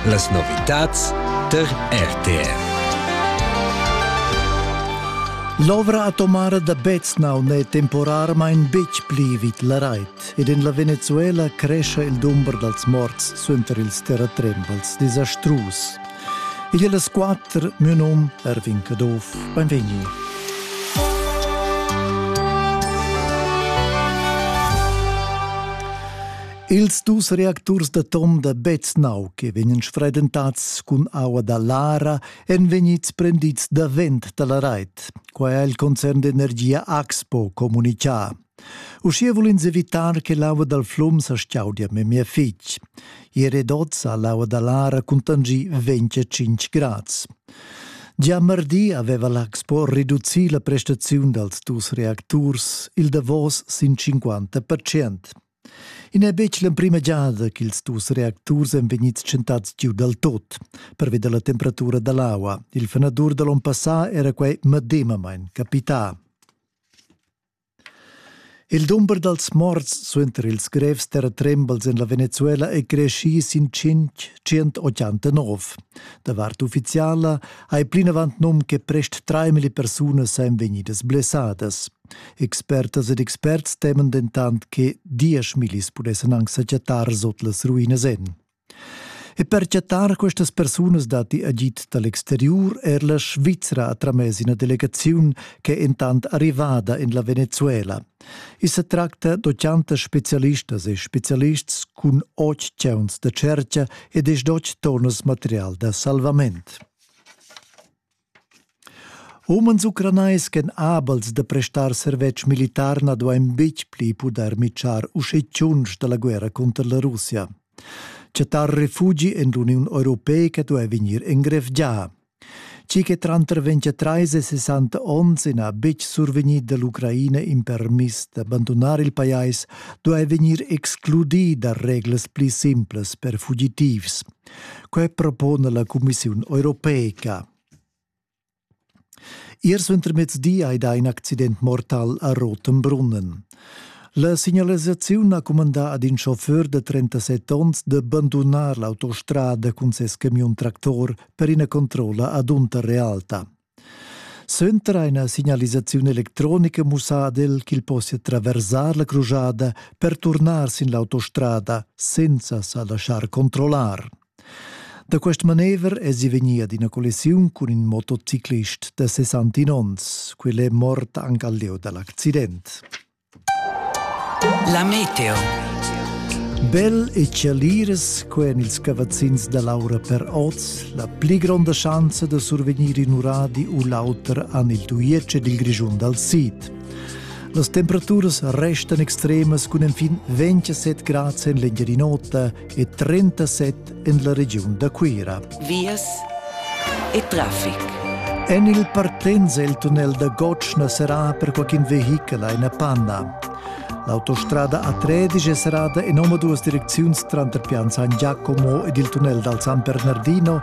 Las novitads tar RTR. L'ovra atomara da Beznau n'è temporarmain betg pli vid la rait ed en la Venezuela crescha il dumber dals morts suenter ils terratrembels desastrus. Igl è las quatter, mio num Erwin Caduff, benvegni. Ils dus reacturs d'atom da Beznau che vegnan sfredentats cun aua da Lara èn vegnids prendids davent da la rait. Quai ha il concern d'energia Axpo communitgà. Uschia vul ins evitar che l'aua dal flum sa stgaudia memia fitg. I è redotz ha l'aua da Lara cuntangì 25 grads. Gia mardi aveva l'Axpo reducì la prestaziun dals dus reacturs il davos sin 50 percent. I n'è betg l'emprima giada ch'ils dus reacturs èn vegnids tschentads giu dal tot, pervi da la temperatura da l'aua. Il fenadur da l'onn passà era quai medemamain capità. Il dumber dals morts suenter ils grevs terratrembels en la Venezuela è creschì sin 589. Da vart uffiziala hai plinavant num che prest 3.000 persunas èn vegnidas blessadas. Expertas ed experts teman dentant che dieschmillis pudessan anc sa chattar sot las ruinas en. E per chattar questas persunas datti agid da l'exteriur er la Svizra ha tramess ina delegaziun ch'è entant arrivada en la Venezuela. I sa tracta d'otganta spezialistas e spezialists cun otg chauns da tschertga ed esdotg tonnas material da salvament. Umens ucranais ch'èn abels da prestar servetsch militar na duain betg pli pudair mitschar uschè tschunsch da la guerra cunter la Russia. Chattar refugi en l'Uniun europeica duai vegnir engrevgià. Tgi che tranter 23 e 60 onns n'ha betg survegnì da l'Ucraina in permis d'abandunar il pajais, duai vegnir excludì da reglas pli simplas per fugitivs, Quei propona la Commissiun europeica. Ier suentermezdi hai dà in accident mortal a Rotenbrunnen. La signalisaziun ha cumandà ad in chauffeur de 37 onns de bandunar l'autostrada cun ses camion tractor per ina controlla ad Unterrealta. Suenter ina signalisaziun electronica mussadel ch'il possia traversar la crujada per turnar sin l'autostrada senza sa laschar controllar. Da quest manever èsi vegnì ad ina collisiun cun in motociclist da 69 onns. Quel è mort anche al lieu da l'accident. La meteo. Bel e chaliras co en ils cavazzins da l'aura per oz, la pli gronda schanza da survegnir in uradi u l'auter han il Tuietsch ed il Grischun dal sid. Las temperaturas restan extremas cun enfin 27 grad en l'Engiadin'Ota e 37 en la regiun da Cuira. Vias e traffic. En il partenz il tunnel da Gotschna serà per qualcun vehichel a Panna. L'autostrada A13 è serrada in omaduas direcziuns tranter Pian San Giacomo ed il tunnel dal San Bernardino